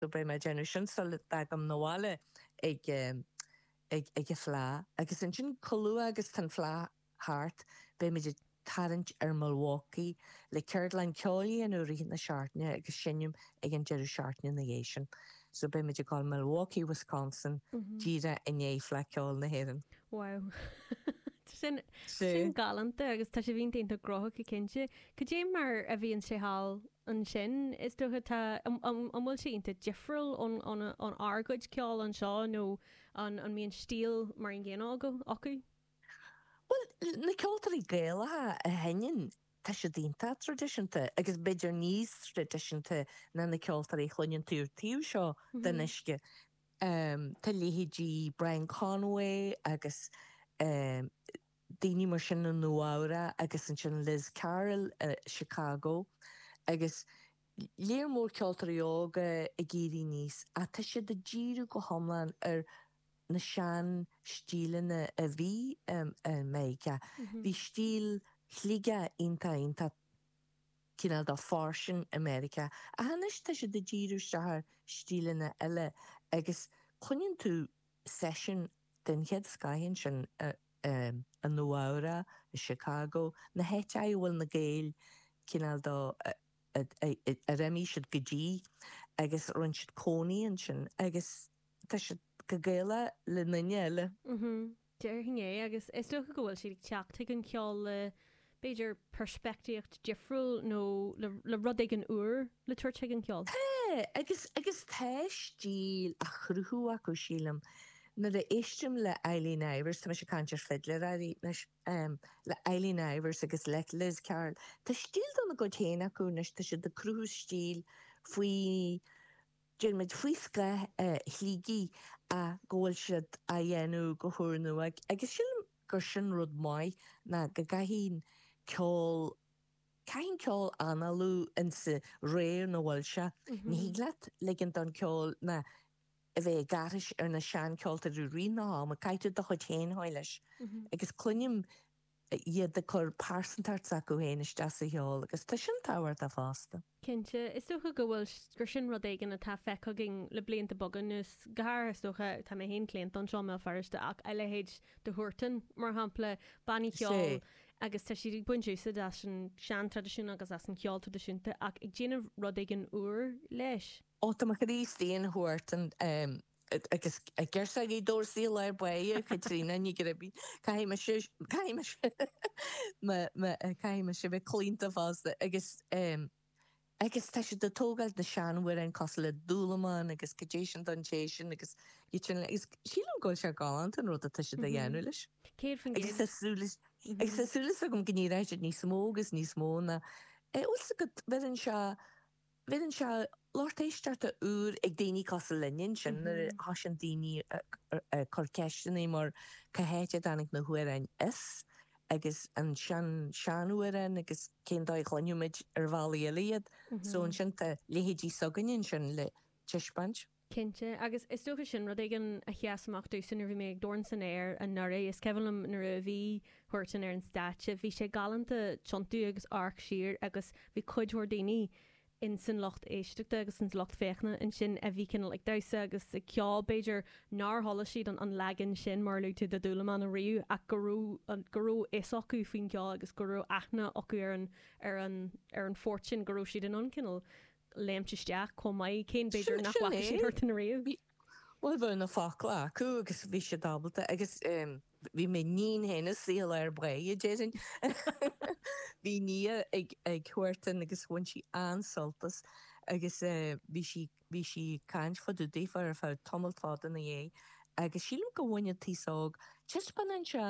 So beidh mé ag déanamh sin sula dtagaim 'na bhaile ag ag an Fhleá. Agus ansin chomh luath agus tá an Fhleá thart beimid ag tarraingt ar Milwaukee le ceardlann ceoil a dhéanamh i rith na seachtaine agus seinm ag an deireadh seachtaine ina dhiaidh sin. So beimid ag dul Milwaukee, Wisconsin díreach i ndiaidh Fleadh Ceoil na hÉireann. Wow. Tá sin sin galanta agus tá sé bhíon iontach gnóthach go cinnte. Cad é mar a bhíonn sé thall ansin, is dócha, tá, an bhfuil sé iontach difriúil ónár gcuid ceoil anseo nó an mbíonn stíl mar an gcéanna acu? Bhuel, na ceoltóirí Gaelacha a sheinneann, tá siad iontach traidisiúnta agus b'fhéidir níos traidisiúnta ná na ceoltóirí a chluineann tú an taobh seo den uisce. Tá leithéidí Brian Conway agus daoine mar sin i Nua-Eabhrac agus ansin Liz Carroll i Chicago agus lear mór ceoltóirí óga ag éirí aníos ach tá siad ag díriú go hiomlán ar na seanstíleanna a bhí i Meiriceá. Bhí stíl Shligigh iontach iontach cineál de fairsing i Meiriceá ach anois tá siad ag díriú isteach ar stíleanna eile agus cluineann tú seisiún a Den chéad scoith ansin i Nua-Eabhrac, i Chicago, na háiteacha a bhfuil na Gaeil cineál de, ar imigh siad go dtí agus a rinne siad cónaí ansin agus tá siad chomh Gaelach le aon duine eile. Déarfainn é agus is dócha go bhfuil siad ag teacht chuig an cheol le b'fhéidir peirspictíocht difriúil nó le rud éigin úr le tabhairt chuig an gceol. Agus agus tá stíl á chruthú acu, sílim. Nuair a éistim le Eileen Ivers, tá mise ag caint ar fidléirí anois, le Eileen Ivers agus le Liz Carroll, tá stíl dá gcuid féin acu anois, tá siad ag cruthú stíl, faoi, déarfaimid, faoi scáth Shligigh ach go bhfuil siad á dhéanamh go húrnua agus sílim, gur sin rud maith, ná go gcaithfidh an ceol, caithfidh an ceol análú insa ré ina bhfuil sé. Ní thig leat ligint don ceol ná a bheith ag aithris ar na sean-ceoltóirí i rith an ama, caithfidh tú do chuid féin a chur leis. Agus cluinim iad ag cur pearsantacht s'acu féin isteach sa cheol, agus tá sin tábhachtach fosta. Cinnte, is dócha go bhfuil, gur sin rud éigin atá feicthe againn le blianta beaga anuas, go háirithe, is dócha, tá mé féin claonta anseo i mBéal Feirste, ach a leithéid de Huartan, mar shampla, bannaí ceoil, agus tá siad ag baint úsaid as an sean-traidisiún agus as an cheol traidisiúnta, ach ag déanamh rud éigin úr leis. Ó, tá mo chroí féin Huartan Agus girseachaí Dorsey Lar Báine, Caitríona Ní Ghribín, caithfidh mise, caithfidh mise, me, me, caithfidh mise a bheith claonta fosta agus, em, agus tá siad ag tógáil na seanamhráin cosúil le dúlamán agus cad é sin don té sin agus iad sin le, agus sílim go bhfuil sé galánta an rud atá siad a dhéanamh leis. Céad faoin Agus tá gcéad. súil, agus tá súil is agam go n-éireoidh siad níos mó agus níos mó na, eh, bhfuil 's agat, bheireann sé, bheireann sé lucht éisteachta úr ag daoine cosúil linn ansin nuair a thosaíonn daoine ag cur ceisteanna mar cá háit a dtáinig na hamhráin as agus an sean sean-amhráin agus cén dóigh a chluinfeadh muid ar bhealaí eile iad. So ansin tá leithéidí s'againne ansin le taispeáint. Cinnte. Agus is dócha sin rud éigin a sheas amach domhsa nuair a bhí mé ag Dorn San Aer anuraidh. Is cuimhin liom nuair a bhí Huartan ar an stáitse, bhí sé galánta tiontú agus amharc siar agus bhí cuid mhór daoine in san lucht éisteachta agus ins lucht féachana ansin a bhí cineál ag damhsa agus ag ceol b'fhéidir nár chuala siad an leagan sin mar a luaigh tú de Dhúlamán ariamh ach go raibh go raibh fhios acu faoin gceol agus go raibh aithne acu ar an ar an ar an phort sin go raibh siad in ann cineál léimt isteach chomh maith, cé mb'fhéidir nach bhfaca siad Huartan ariamh. Bhuel, bhí na focla acu agus bhí siad ábalta, agus bhí m'iníon féin ag suíl ar Bhao, a déarfainn. Bhí Nia ag Huartan, agus bhain sí an-sult as, agus bhí sí, bhí sí ag caint fá dtaobh daofa ar feadh tamall fada ina dhiaidh, agus sílim go bhain an t-aos óg, taispeánann sé,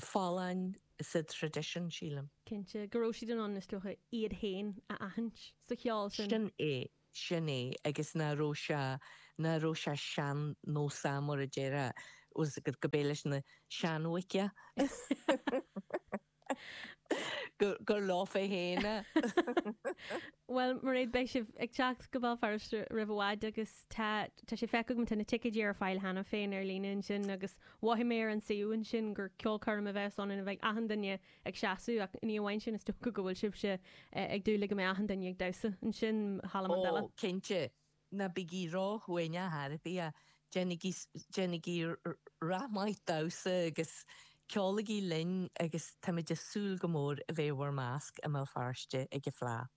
folláin sa traidisiún, sílim. cinnte, go raibh siad in ann, is dócha, iad féin a aithint sa cheol sin. Sin é, sin é, agus nach raibh sé, nach raibh sé sean-nósach, mar a déarfá, was it, gurb é leis na seanbhoic é, gur leofa féin é. Bhuel, Mairéad, beidh sibh ag teacht go Béal Feirste roimh i bhfad agus. Tá, tá sé feicthe agam, tá na ticéidí ar fáil cheana féin ar líne ansin agus mhothaigh mé ar an suíomh ansin gur ceolchoirm a bheas ann ina mbeidh achan duine ag seasamh ach ní amháin sin is dócha go bhfuil sibhse ag dúil le go mbeidh achan duine ag damhsa ansin, Halla Mandela. cinnte, ná bígí róchiúin ar chor ar bith, déanaigí, déanaigí rath maith damhsa agus ceolaigí linn agus táimid ag súil go mór a bheith i bhur measc i mBéal Feirste ag an Fleadh.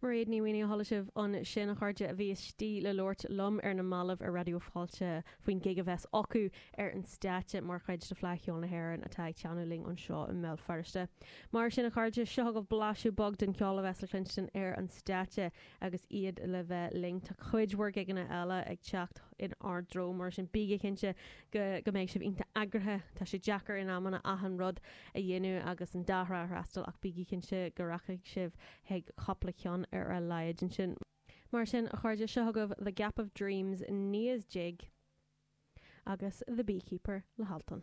Mairéad Ní Mhaonaigh, a chuala sibh ansin, a chairde a bhí istigh le labhairt liom ar na mallaibh ar Raidió Fáilte faoin gig a bheas acu ar an stáitse mar chuid de Fleadh Cheoil na hÉireann atá ag teannadh linn anseo i mBéal Feirste. Mar sin, a chairde, seo agaibh blaiseadh beag den cheol a bheas le cluinstin ar an stáitse agus iad le bheith linn. Tá cuid mhór gigeanna eile ag teacht in ár dtreo, mar sin bígí cinnte go mbeidh sibh iontach eagraithe, tá sé deacair in amanna achan rud a a dhéanamh agus an dá thrá a fhreastal ach bígí cinnte go rachaidh sibh chuig cúpla ceann ar a laghad ansin. Mar sin, a chairde, seo agaibh The Gap of Dreams, Nia's Jig agus The Beekeeper le hAltan.